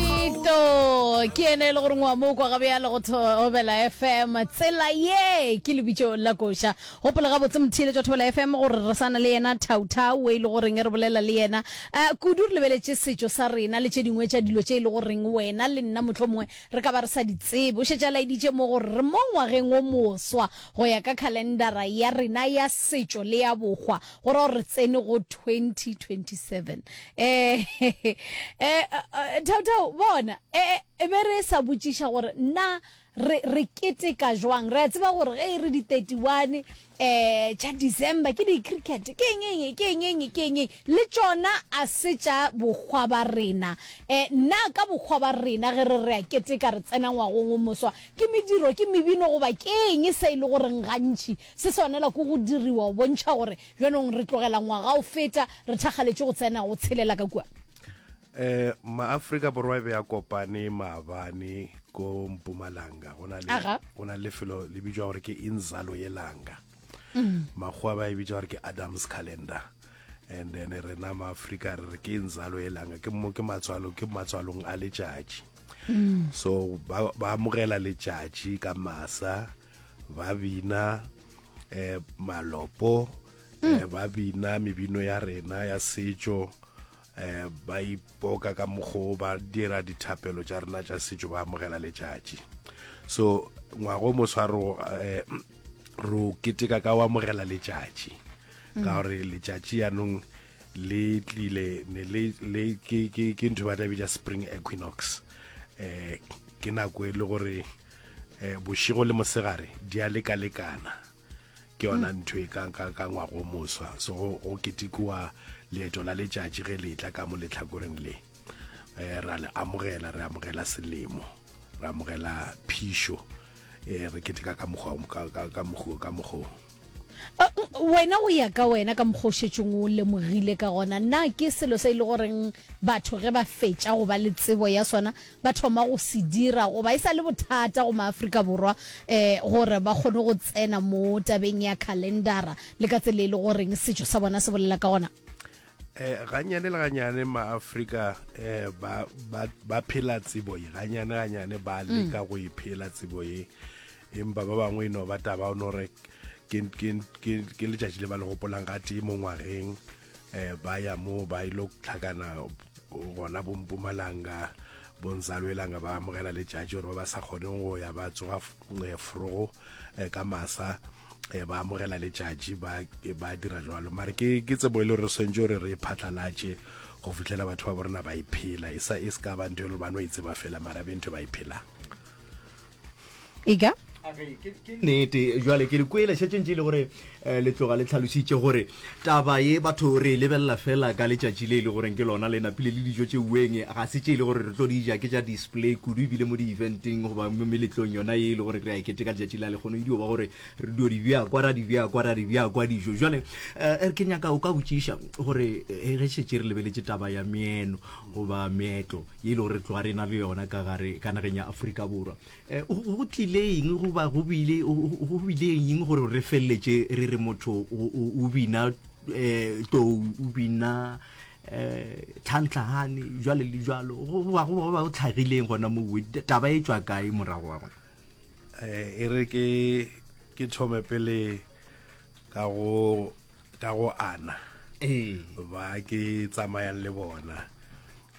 Ito ke ene e le gore ngwa mo kwa gabe ya le go thobela fm tsela ye ke lebitso la koša gopola gabotse mothile tša thobela fm gore re sana le yena thautau e le goreng e re bolela le yena um kudu re lebeletše setšo sa rena le tše dingwe tša dilo tše e le goreng wena le nna motlho mongwe re ka ba re sa di tsebe o šetše a laeditše mo gore re mo ngwageng o moswa go ya ka calendara ya rena ya setšo le ya bokgwa go ra gore re tsene go 2027 um thaothao bona e be re sa botšiša gore na re re keteka jwang re a tseba gore ge e re di 31 um tša december ke di-cricket ke eng eng ke eng eng ke eng eng le tšona a se tša bokgwa ba rena um na ka bokgwa ba rena ge re re a keteka re tsena ngwagong o moswa ke mediro ke mebino goba ke eng se e le goreng gantši Se swanela ke go diriwa go bontšha gore bjanong re tlogela ngwaga o feta re thakgaletše go tsena go tshelela ka kua. Um maafrika borwa e be ya kopane maabane ko mpumalanga go na le go na lefelo le bitšwa gore ke inzalo ye langa mm. makgowa ba e bitša gore ke adams calendar and then rena maafrika re re ke inzalo ye langa ke mo ke matswalo ke matswalong a letšatši mm. so ba amogela letšatši ka masa ba bina eh, malopo eh, mm. ba bina mebino ya rena ya setšo eh, ba ipoka ka mokgo ba dira dithapelo tša rena tša setšo ba amogela letšatši so ngwago moswa ro eh, ro keteka ka o amogela letšatši mm. ka gore letšatši yanong le tlile ne le le ke ke ke ntho ba tla bitsa spring equinox eh ke nako e le gore eh, bošego le mosegare di a lekalekana ke yona mm. ntho e ka ngwago moswa so go ketikowa leeto la letšatši ge letla ka mo letlhakoreng le um ra le amogela re amogela selemo re amogela phišo um re keteka ka mokgwa ka mokgwa wena o ya ka wena ka mokgošetšong o lemogile ka gona na ke selo se e le goreng batho ge ba fetša go ba le tsebo ya sona ba thoma go se dira goba e sa le bothata go maaforika borwa um gore ba kgone go tsena mo tabeng ya calendara le ka tsela e le goreng setšo sa bona se bolela ka gona eh ganyane le ganyane maafrika eh ba ba phela tsebo e ganyane ganyane ba leka mm. go iphela e tsebo e empa ba bangwe e no ba taba o no re ke letšatši le ba le gopolang ga tee mo ngwageng um ba ya moo ba ile tlhakana gona bompumalanga bonsalwelanga ba amogela letšatši gore ba ba sa kgoneng go ya ba tsoga eh, frogo eh, ka masa eh, ba amogela letšatši ba dira jalo mare ke tsebo e le gore swantse gore re e phatlalatše go fitlhela batho ba borena ba iphela e sa e se ka ba ntho e le ba no e tseba fela mara be ntho ba iphelang ega nete jale ke le kwele šetšeng tše e le gore eh, le tloga le tlhalositše gore taba ye batho re e lebelela fela ka letšatši le e le goreng ke lona le napile le dijo tše ueng ga se tše e le gore re tlo di ja ke tša display kudu ebile mo di-eventeng goba mo meletlong yona ye e le gore re a ekete ka letšatši la lekgono edio ba gore re dio di bja kwa ra di bja kwa ra di bja kwa dijo jale eh, er ke nyaka o ka botšiša gore eh, ge šetše re lebeletše taba ya meeno goba meetlo ye e le gore tloga re na le yona ka gare ka nageng ya aforika borwa um go tlile eng goba go bile eng gore re feleletse re re motho o bina um tou o bina um tlhantlhagane jalo le jalo goba go tlhagileng gona mo taba e tswa kae morago wa gona um e re ke thome pele ka go ana ee. ba ke tsamayang le bona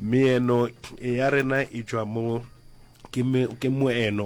Meeno ya rena e tšwa mo, ke moeno.